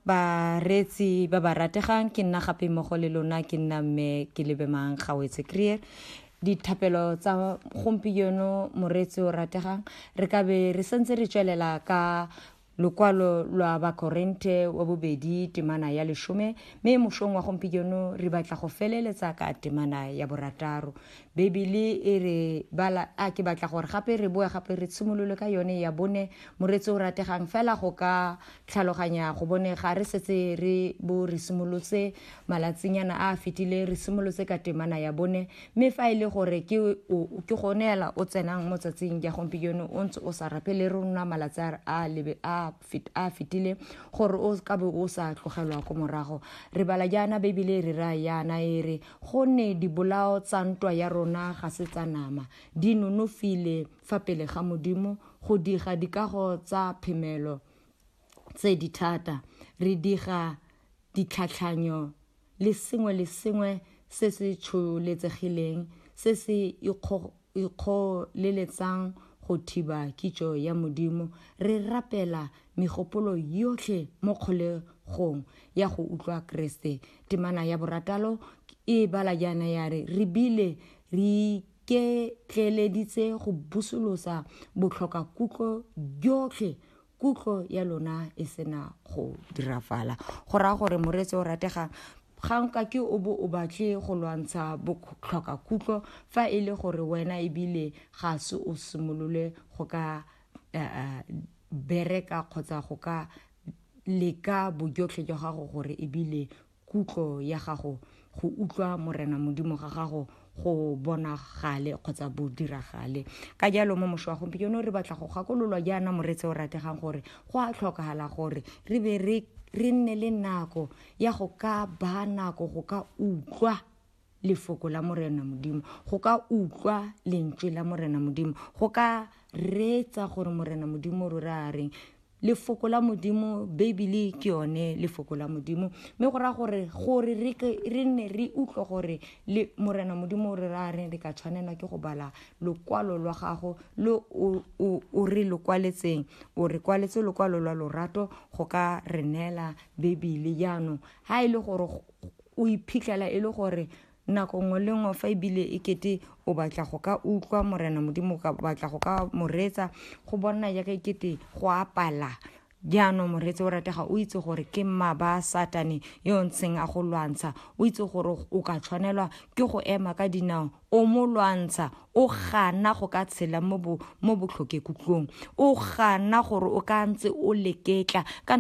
Bareetsi ba ba rategang, ke nna gape mmogo le lona ke nna mme ke lebemang gawetse creer dithapelo tsa gompieno moreetsi o rategang re ka be re sentse re tswelela ka lokwalo lwa bakorente wa bobedi temana ya leshome mme mošong wa gompieno re batla go feleletsa ka temana ya borataro Bibele e re bala a ke batla gore gape re boe gape re tshimolole ka yone ya bone moretsi o rategang fela go ka tlhaloganya go bone ga re setse re bo re simolotse malatsinyana a a fetileng re simolotse ka temana ya bone mme fa e le gore ke ke gone ela o tsenang mo tsatsing ya gompieno o ntse o sa rape le rona malatsi a a a fetile gore o ka be o sa tlogelwa ko morago re bala jaana beibele e re ra yana e re gonne dibolao tsa ntwa ya rona ga se tsa nama di nonofile fa pele ga modimo go diga dikago tsa phemelo tse di thata re diga ditlhatlhanyo le sengwe le sengwe se se tsholetsegileng se se ikgoleletsang go thiba kitso ya Modimo, re rapela megopolo yotlhe mo kgolegong ya go utlwa Keresete. Temana ya borataro e bala jaana ya re, Re bile re iketleeleditse go busolosa botlhokakutlo jotlhe kutlo ya lona e sena go dirafala go raya gore moreetsi o rategang ga nka ke o bo o batle go lwantsha botlhoka kutlo fa e le gore wena ebile ga se o simolole go ka eh, eh, bereka kgotsa go ka leka bojotlhe jwa gago gore ebile kutlo ya gago go utlwa morena modimo ga gago go bonagale kgotsa bo diragale ka jalo mo mošo wa gompieno re batla go gakololwa jaana moretse o rategang gore go a tlhokagala gore re be re nne le nako ya go ka ba nako go ka utlwa lefoko la Morena Modimo, go ka utlwa lentswe la Morena Modimo, go ka reetsa gore Morena Modimo rora a reng. Lefoko la Modimo, Beibele ke yone lefoko la Modimo, mme go raya gore gore re nne re utlwe gore le Morena Modimo o re ra reng re ka tshwanelwa ke go bala lokwalo lwa gago lo o re lo kwaletseng o re kwaletse lokwalo lwa lorato go ka re neela Beibele jaanong ga e le gore o iphitlhela e le gore nako nngwe le nngwe fa ebile e kete o batla go ka utlwa morena modimo o ka batla go ka moretsa go bona jaaka e kete go apala jaanong moretse o ratega o itse gore ke mma ba satane yo ntsheng a go lwantsha o itse gore o ka tshwanelwa ke go ema ka dinao o mo lwantsha o gana go ka tshela mo botlhokekutlong o gana gore o ka ntse o leketla